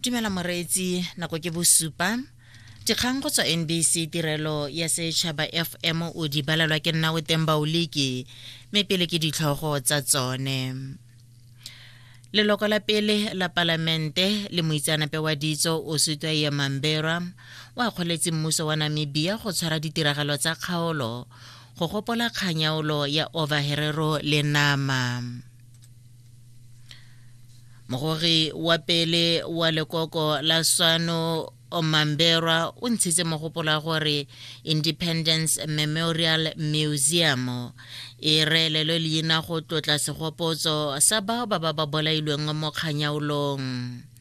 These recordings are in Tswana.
dumela moreetsi nako ke bosupa dikgang go tswa nbc tirelo ya setšhaba fm o di balelwa ke nna o teng baoliki mme pele ke ditlhogo tsa tsone leloko la pele la palamente le moitseanape wa ditso o sutwa ye mamberwa o akgoletse mmuso wa namibia go tshwara ditiragalo tsa kgaolo go gopola kganyaolo ya overherero le nama mogogi wa pele wa lekoko la swano omamberwa o ntshitse mogopolo wa gore independence memorial museum e reelelwe leina go tlotla segopotso sa bao ba ba ba bolailweng mo kganyaolong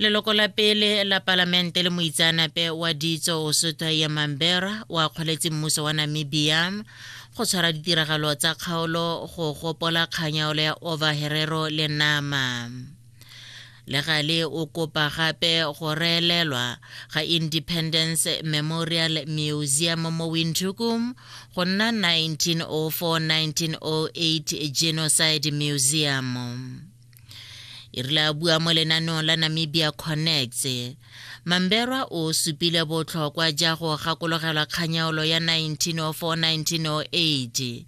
leloko la pele la palamente le moitseanape wa ditso o sotho ya mambera o akgoletse mmuso wa namibia go tshwara ditiragalo tsa kgaolo go gopola kganyaolo ya ova herero le nama le gale o kopa gape go reelelwa ga independence memorial museum mo windhoekum go nna 1904-1908 genocide museum e rile a bua mo lenaneong la namibia connects mamberwa o supile botlhokwa ja go gakologelwa kganyaolo ya 1904-1908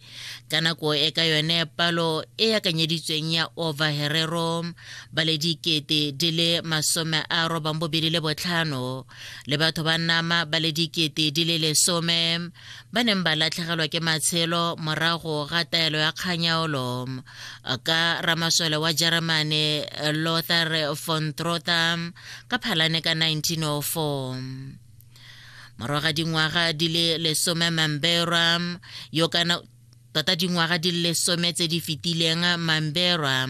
ka nako e ka yone palo e yakanyeditsweng ya overherero ba le dikete di le masome a robang bobedi le botlhano le batho ba nama ba le dikete di le lesome ba neng ba latlhegelwa ke matshelo morago ga taelo ya kganyaolo ka ramasole wa germany lothar von trotter ka phalane ka 1904 morago ga dingwaga di le lesome mamberwa yo kana Tota dingwaga di le lesome tse di fetileng, Mamberwa,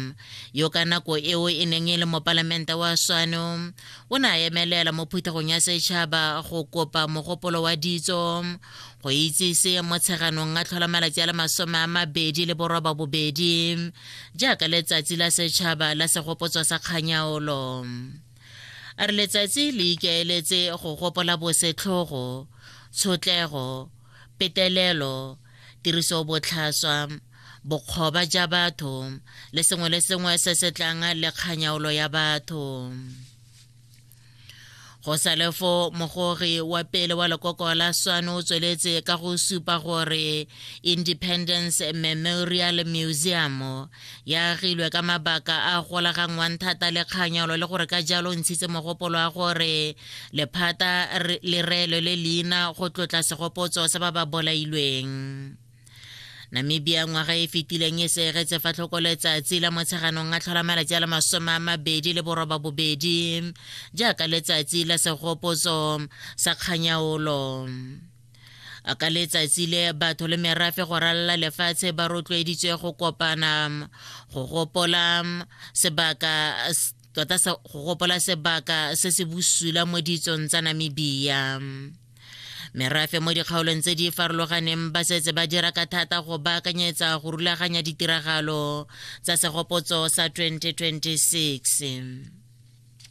yo ka nako eo e neng e le mopalamente wa Swano, o ne a emelela mo phuthegong ya setšhaba go kopa mogopolo wa ditso go itsise mo tsheganong a tlhola malatsi a le masome a mabedi le boroba bobedi jaaka letsatsi la setšhaba la segopotswa sa kganyaolo a re letsatsi le ikaeletse go gopola bosetlhogo tshotlego petelelo tirisobotlhaswa, bokgoba ja batho le sengwe le sengwe se se tlang le kganyaolo ya batho go salefo mogori wa pele wa lekoko la swano o tsweletse ka go supa gore independence memorial museum E agilwe ka mabaka a golaganngwang thata le kganyolo le gore ka jalo ntshitse mogopolo wa gore lephata le reelwe le leina go tlotla segopotso sa ba ba bolailweng namibia ngwaga e fetileng e seegetse fa tlhoko letsatsi la motsheganong a tlhola malatsi a le masome a mabedi le boroba bobedi jaaka letsatsi la segopotso sa kganyaolo a ka letsatsi le batho le merafe go ralala lefatshe ba rotloeditswe go kopana go gopola sebaka tota go gopola sebaka se se bosula mo ditsong tsa namibia merafe mo dikgaolong tse di farologaneng ba setse ba dira ka thata go baakanyetsa go rulaganya ditiragalo tsa segopotso sa 2026